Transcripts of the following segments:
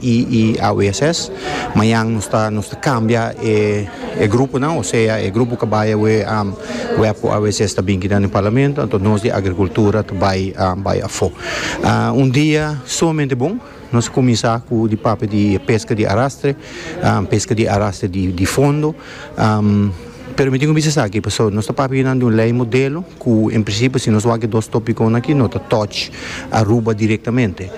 y y aweses mañan nos ta nos ta cambia e e gruponan o sea e grupo cu bay awe am web cu aweses ta binki nan den Parlamento anto nos di Agricultura ta bay am bay afo un dia sumamente bon nos a cuminsa cu di papia di pesca di arastre am pesca di arastre di di fondo am. Pero mi tin ku bisa esaki pasobra nos ta papia nan di un lei modelo ku en prinsipio si nos wak e dos topikonan aki no ta touch Aruba direktamente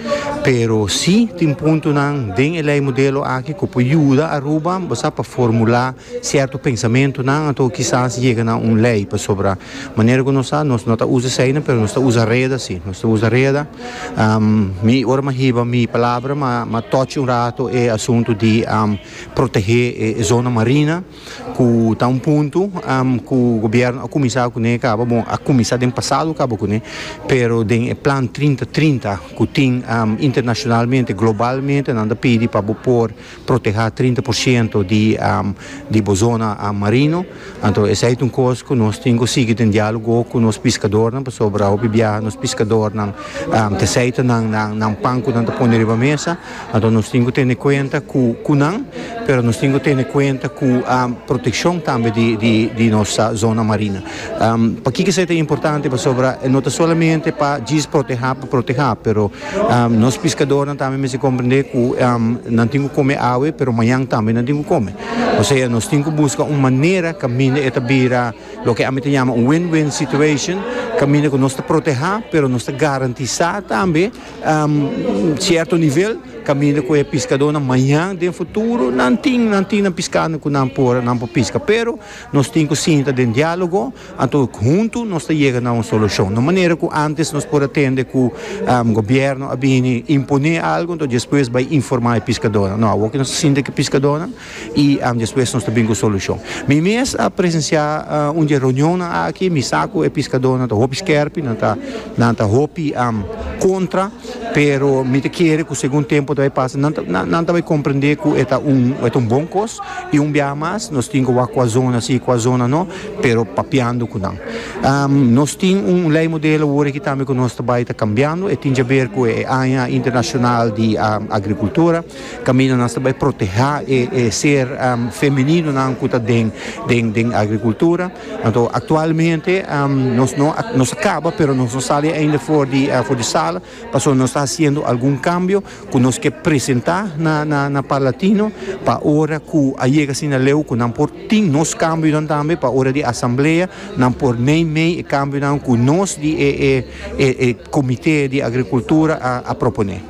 pero si tin puntonan den e lei modelo aki ku por yuda Aruba sa pa formula sierto pensamentonan anto kisas yega na un lei pasobra manera ku nos sa nos no ta usa eseinan pero nos ta usa reda si nos ta usa reda mi ora mi a hiba mi palabra mi a touch un rato e asunto di protehe e zona marina. ku ta un punto ku gobierno a kuminsá kuné kaba bon a kuminsá den pasado kaba kuné pero den e plan trinta trinta ku tin internashonalmente globalmente nan ta pidi pa bo por protehá trinta por shento di bo zona marino anto esei ta un kos ku nos tin ku sigui den dialogo ku nos piskadornan pasobra hopi biaha nos piskadornan ta seita nan pan ku nan ta pone riba mesa. Anto nos tin cu tene cuenta cu cu nan, pero nos tin cu tene cuenta cu proteccion tambe di di di nos zona marina. Paki cu esey ta importante? Pasobra e no ta solamente pa djis proteha pa proteha, pero nos piscadornan tambe mester comprende cu nan tin cu come awe, pero mañan tambe nan tin cu come. Osea nos tin cu busca un manera caminda e ta bira loke ami ta yama un win-win situation, caminda cu nos ta proteha, pero nos ta garantisa tambe cierto nivel caminda cu e piscadornan mañan den futuro nan tin nan tin nan piscando cu nan por nan por pisca pero nos tin cu sinta den dialogo anto hunto nos ta yega na un solucion no manera cu antes nos por a tende cu gobierno a bini impone algo anto despues bai informa e piscadornan no awo cu nos ta sinti cu e piscadornan Y am despues nos ta bin cu solucion. Mi mes a presencia un dje reunionnan aki, mi sa cu e piscadornan ta hopi skerpi, nan ta, nan ta hopi am contra, pero mi ta kere cu segun tempo ta bay pasa, nan ta, nan, nan ta bay comprende cu e ta un, e ta un bon cos, y un biaha mas nos tin cu wak cu a zona si, cu a zona no, pero papiando cu nan. Am, nos tin un ley modelo awor aki tambe cu nos ta bay ta cambiando, e tin djaber cu e aña internacional di, am, agricultura. Caminda nos ta bay proteha e e ser femenino nan cu ta den den den agricultura. Anto actualmente nos no a nos a caba pero nos no sali ainda for di for di sala pasobra nos ta haciendo algun cambio cu nos ke presenta na na na Parlatino pa ora cu a yega asina leu cu nan por tin nos cambionan tambe pa ora di asamblea nan por mey mey e cambionan cu nos di e e e e comite di agricultura a a propone.